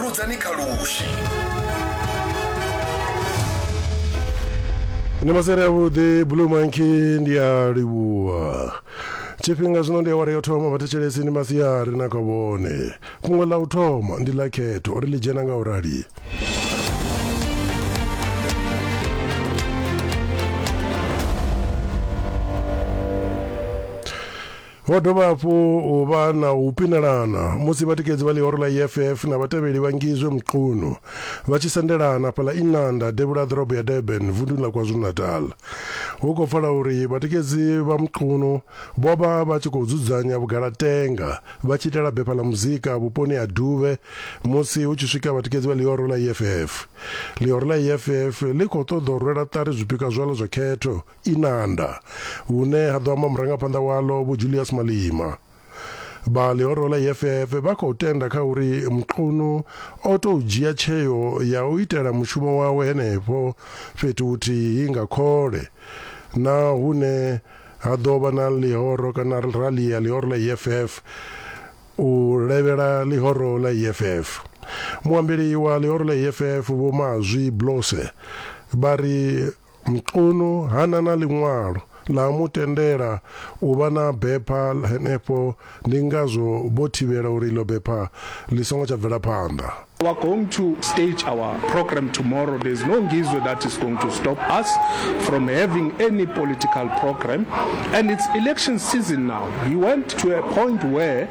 rudzani kha lushi ni masere avhuḓi blue monkey ndi a livhuwa tshifhinga zwino ndi awara yo thoma vhathetshelesi ni masiari na kha vhone fhungo ḽa u thoma ndi ḽa khetho uri ḽi dzhena nga u rali Ho dovha hafhu u vha na u pinelana musi vhatikedzi vha ḽihoro ḽa EFF na vhatevheli vha Ngizwe Mchunu vha tshi sendelana fhaḽa Inanda devhula ḓorobo ya Durban vunḓuni ḽa KwaZulu-Natal. Hu khou pfala uri vhatikedzi vha Mchunu vho vha vha tshi khou dzudzanya vhugalatenga vha tshi itela bepha ḽa muzika vhuponi ha Duvhe musi hu tshi swika vhatikedzi vha ḽihoro ḽa EFF. Ḽihoro ḽa EFF ḽi khou ṱoḓa u rwela ṱari zwipikwa zwaḽo zwa khetho Inanda, vhune ha ḓo amba murangaphanḓa waḽo Vho Julius Malima. Vha ḽihoro ḽa EFF vha khou tenda kha uri Mchunu o tou dzhia tsheo ya u itela mushumo wawe henefho fhethu huthihi nga khole na hune ha ḓo vha na ḽihoro kana rali ya ḽihoro ḽa EFF u levhela ḽihoro ḽa EFF. Muambeli wa ḽihoro ḽa EFF Vho Mazwi Blose vha ri Mchunu ha na na ḽiṅwalo ḽa mu tendela u vha na bepha henefho ndi ngazwo vho thivhela uri iḽo bepha ḽi songo tsha bvela phanḓa. We are going to stage our programme tomorrow, there's no Ngizwe that is going to stop us from having any political programme and it's election season now. He went to a point where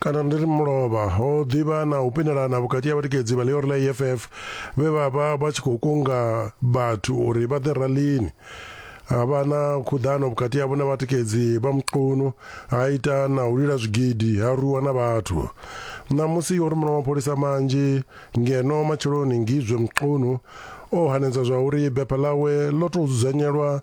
kana ndi ri mulovha ho ḓivha na u pendelana vhukati ha vhatikedzi vha ḽiori ḽa eff vhe vha vha vha tshi khou kunga vhathu uri vha ḓe ralini ha vha na khuḓano vhukati havho na vhatikedzi vha muqunu ha ita na u lila zwigidi ha rwiwa na vhathu ṋamusi yo rumela mapholisa manzhi ngeno matsheloni ngizwe muqunu o hanedza zwa uri bepha ḽawe ḽo tou dzudzanyelwa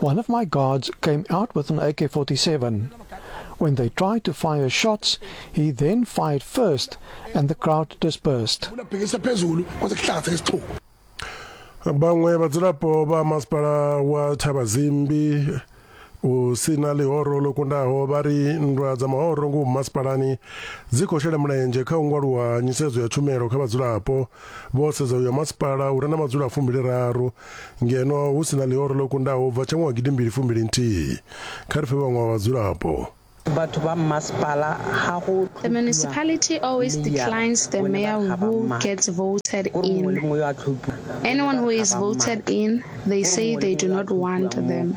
One of my guards came out with an AK 47. When they tried to fire shots, he then fired first and the crowd dispersed. vhaṅwe vhadzulapo vha masipala wa thavha zimbi u si na ḽihoro ḽo kundaho vha ri nndwa dza mahoro ngomu masipalani dzi khou shela mulenzhe kha u ngwaluwa nyisedzo ya tshumelo kha vhadzulapo vho sedza uyo masipala u re na madzula fumbili raru Ngeno hu si na ḽihoro ḽo kundaho u bva tsha ṅwaha gidimbili fumbili nthihi, kha ri fhe vhaṅwe vha vhadzulapo. Vhathu vha mmasipala ha ho The municipality always declines the mayor who gets voted in. Anyone who is voted in, they say they do not want them.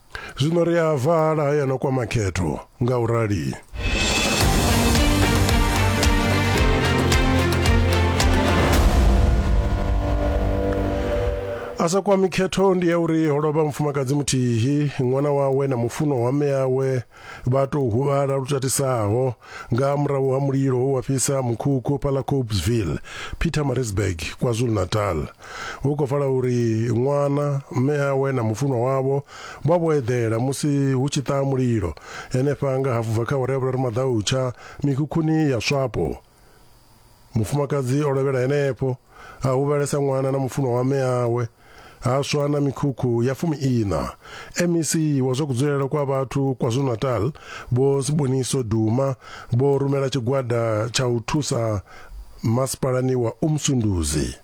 Zwino ri a vala hayana kwa makhetho nga u rali. a sa kwami khetho ndi ya uri ho lovha mufumakadzi muthihi ṅwana wawe na mufunwa wa mme yawe Vha tou huvhala lu tatisaho nga murahu ha mulilo we wa fhisa mukhukhu fhaḽa Cobesville, Pietermaritzburg, KwaZulu-Natal. Hu khou pfala uri ṅwana, mme awe na mufunwa wavho vha vho eḓela musi hu tshi ṱaha mulilo henefha nga hafu bva kha awara ya vhuraru maḓautsha mikhukhuni ya Swapo. Mufumakadzi o lovhela henefho, a huvhalesa ṅwana na mufunwa wa mme awe, ha swa na mikhukhu ya fumi-iṋa. MEC wa zwa kudzulele kwa vhathu KwaZulu-Natal, Vho Siboniso Duma, vho rumela tshigwada tsha u thusa masipalani wa Umsunduzi.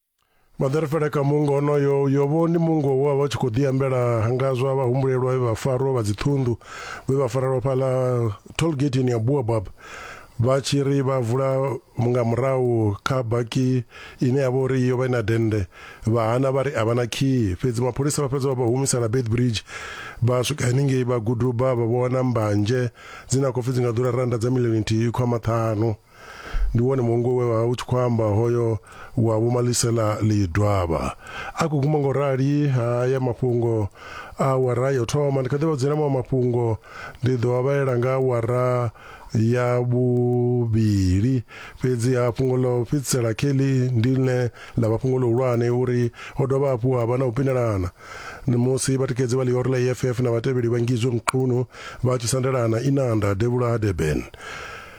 Maḓerefele kha muungo onoyo, Yobo ndi muungo we wa vha u tshi khou ḓiambela nga zwa vhahumbulelwa vhe vha farwa vha dziṱhunḓu vhe vha farelwa fhaḽa tollgateni ya Boabab vha tshi ri vha vula nga murahu kha baki ine ya vha uri yo vha i na dennde vha hana vha ri a vha na khiyi fhedzi mapholisa vha fhedza vha vha humisela Beitbridge vha swika henengei vha guduba vha vho wana mbanzhe dzine a khou pfi dzi nga ḓura rannda dza milioni nthihi khwa maṱhanu ndi wone muungo we wa u tshi khou amba hoyo wa vho malisela lidwavha a khou guma ngo rali haya mafhungo a wara yo thoma ndi kha ḓi vha dzena maṅwe mafhungo ndi ḓo a vhalela nga wara ya vhuvhili fhedzi ha fhungo ḽo fhedzisela kelly ndi ḽine ḽa vha fhungo ḽihulwane uri ho dovha hafhu ha vha na u pinelana musi vhatikedzi vha ḽiori ḽa eff na vhatevheli vha ngizwe mqunu vha tshi sandelana inanda devhula ha durban